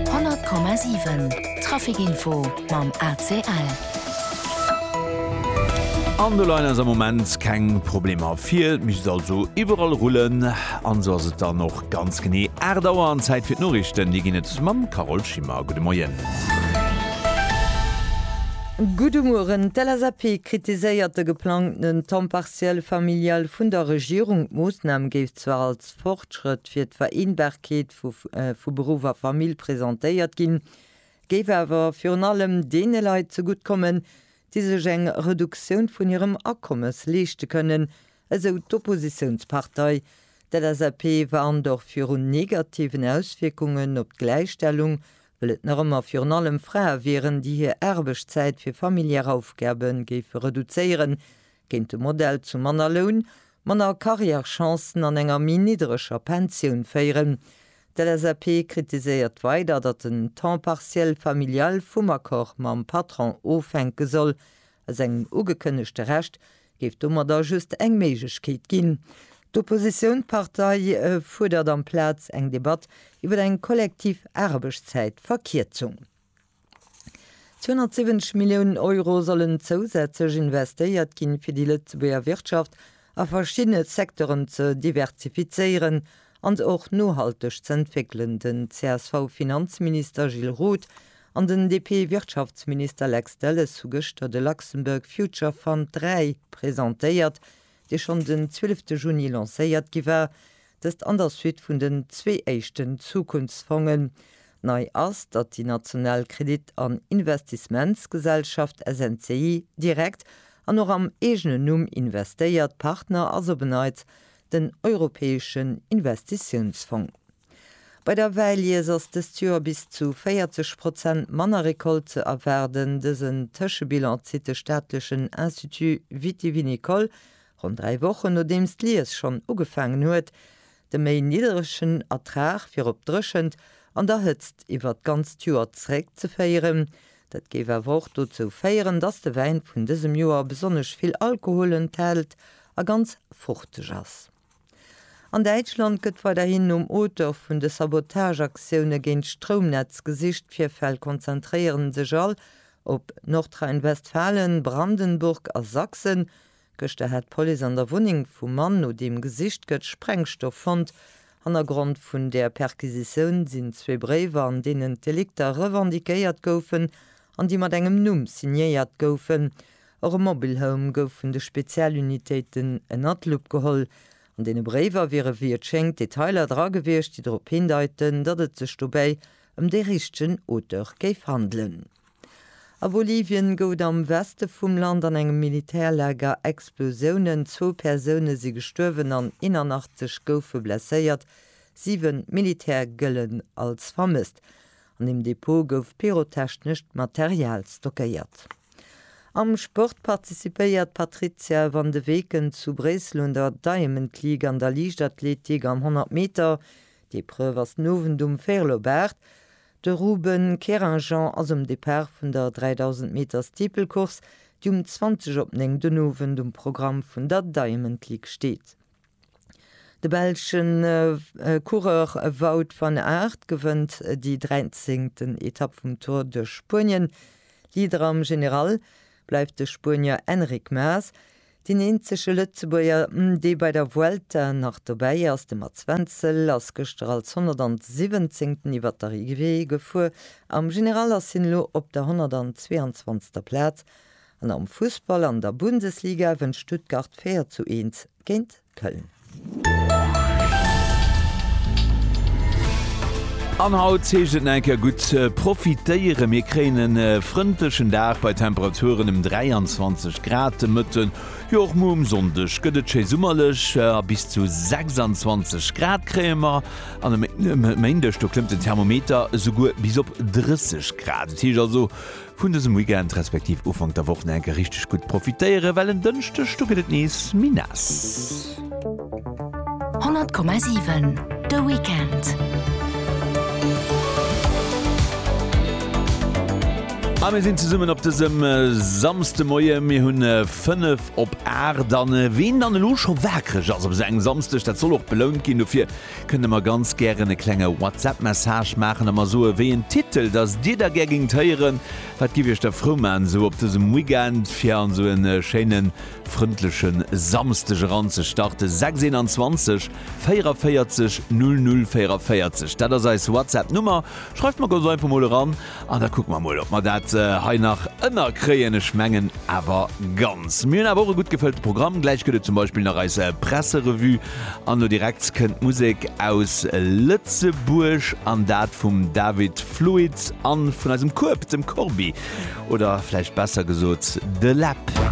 100,7 Traficinfo mam ACL. An do leien eis am Moment keng Problemer vir. Et misst also iwwerall rullen. An esou ass et dann och ganz genee 8 Auer an Zäit fir d'Noriichten. Déi ginn et mam Carole Schimmer. Gudde Moien. Gudde Mueren. D'LSAP kritiséiert de geplangtenen Temps partiel familial vun der Regierung. D'Moossnam géif zwar als. Fortschrëtt fir d'Vereenbarkeet vu Beruff a Famill presentéiert ginn, géif awer virun allem deene Leit zegutt kommen, déi sech eng Reduktioun vun hirem Akommes leeschte kënnen, esou d'Oppositiounspartei. D'LSAP warnt och virun negativen Auswierkungen op d'Gläichstellung, well et nach ëmmer virun allem Frae wieren, déi hir Aarbechtszäit fir familiär Aufgabe géife reduzéieren, Géint de Modell zu manner Loun, manner Carrièrechancen an enger méi niddreger Pensioun féieren. D'LSAP kritiséiert weider, datt den Temps partiel familial vum Accord mam Patron ofhänke soll. Aus engem ugekënnegte Recht géif domadder just eng Méiglechkeet ginn. D'Oppositioun Partei fuerdert amplaz eng Debatt iwwer eng kollektiv Aarbechtszäitverkierzung. 270 Milliounen Euro sollen zousätzlech investéiert ginn, fir déi Lëtzebuerger Wirtschaft a verschiddene Secteuren ze diversifizéieren an se och nohalteg ze entwéckelen. Den CSV-Finanzminister Gilles Roth an den DP-Wirtschaftsminister Lex Delles hu gëschter de Luxembourg Future Fund 3 presentéiert, dee schonn den 12 de Juni lancéiert gi war, dëst an der Suite vun den zwee éischten Zukunftsfongen. Nei ass, datt déi national Kredit an Investissementsgesellschaft SNCI direkt an och am eegenen Numm investéiert, Partner ass op en Neits den Europäeschen Investitiounsfong. Bei der Wäilies ass dëst Joer bis zu 40 Prozent manner Recolte ze erwaarden. Dësen Tëschebilan zitt de staatlechen Institut vitivinicole ronn dräi Wochen, nodeems d'Lies schonn ugefaangen huet. De méi nidderegen Ertrag wier op d'Dréchent an der Hëtzt iwwert d'ganzt Joer zeréckzeféieren. Dat géif awer och dozou féieren, datt de Wäin vun dësem Joer besonnesch vill Alkohol enthält a ganz fruchteg ass. An Däitschland gëtt weiderhin nom Auteur vun de Sabotageaktioune géint d'Stroumnetz gesicht. D'Virfäll konzentréiere sech all op Nordrhein-Westfalen, Brandenburg a Sachsen. Gëschter hat d'Police an der Wunneng vum Mann, no deem gesicht gëtt, Sprengstoff fonnt. Hannergrond vun där Perquisitioun sinn zwee Bréiwer, an deenen d'Delikter revendiquéiert goufen an déi mat engem Numm signéiert goufen. Och e Mobile Home gouf vun de Spezialunitéiten ënner d'Lupp geholl. An deene Bréiwer wiere wéi et schéngt Detailer dra gewiescht, déi drop hindeiten, datt et sech dobäi ëm dee richtegen Auteur géif handelen. A Bolivien gouf et am Weste vum Land an engem Militärlager Explosiounen. Zwou Persoune si gestuerwen an 81 goufe blesséiert. Siwe Militär gëllen als vermësst. An dem Depot gouf pyrotechnescht Material stockéiert. Am Sport participéiert d'Patrizia van de Weken zu Bréissel un der Diamond League an der Liichtathletik am 100 Meter. D'Epreuve ass den Owend um Vérlobaart. De Ruben Keringean ass um Depart vun der 3000 Meter Steeple-Course, déi um 20 op 9 den Owend um Programm vun der Diamond League steet. De belschen Coureur Wout van Aert gewënnt déi 13. Etapp vum Tour de Spuenien. Leader am General bleift de Spuenier Enric Maas. Deen eenzege Lëtzebuerger, dee bei der Vuelta nach dobäi ass, de Mats Wenzel, ass gëschter als 117. iwwert d'Arrivée gefuer. Am General ass hien elo op der 122. Plaz An am Fussball an der Bundesliga wënnt Stuttgart 4 zu 1 géint Köln. An haut heescht et nach eng Kéier gutt profitéieren. Mir kréien e frëndlechen Dag bei Temperaturen ëm 23 Grad de Mëtten. Jo och muer um Sonndeg gëtt et schéi summerlech a bis zu 26 Grad kréie mer. An e Méindeg do klëmmt den Thermometer esouguer bis op 30 Grad. Et heescht also vun dësem Weekend respektiv Ufank der Woch nach eng Kéier richteg gutt profitéieren, well en Dënschdeg do gëtt et nees méi naass. 100,7 de Weekend. A mir sinn zesummen op dësem Samsdemoie, mir hunn 5 op 8 an ween dann elo scho wakereg ass op esou engem Samsdeg, dat soll och belount ginn dofir. Kënnt der mer ganz gären e klenge WhatsApp-Message maachen a mer soen, wéi een Titel dass Dir da gär géingt héieren. Wat giff Iech da frou maachen, esou op dësem Weekend fir an esou e schéine frëndleche Samsdeg eranzestarten? 621 44 00 44, dat ass eis WhatsApp-Nummer. Schreift mer ganz einfach mol eran. An da kucke mer mol, ob mer dat hei nach ënnerkréien. Ech mengen awer ganz. Mir hunn awer och e gutt gefëllte Programm. Gläich gëtt et zum Beispill nach eis Presserevue an elo direkt kënnt d'Musek aus Lëtzebuerg an dat vum David Fluit a vun eisem Kueb, dem Corbi, oder vläicht besser gesot de Läb.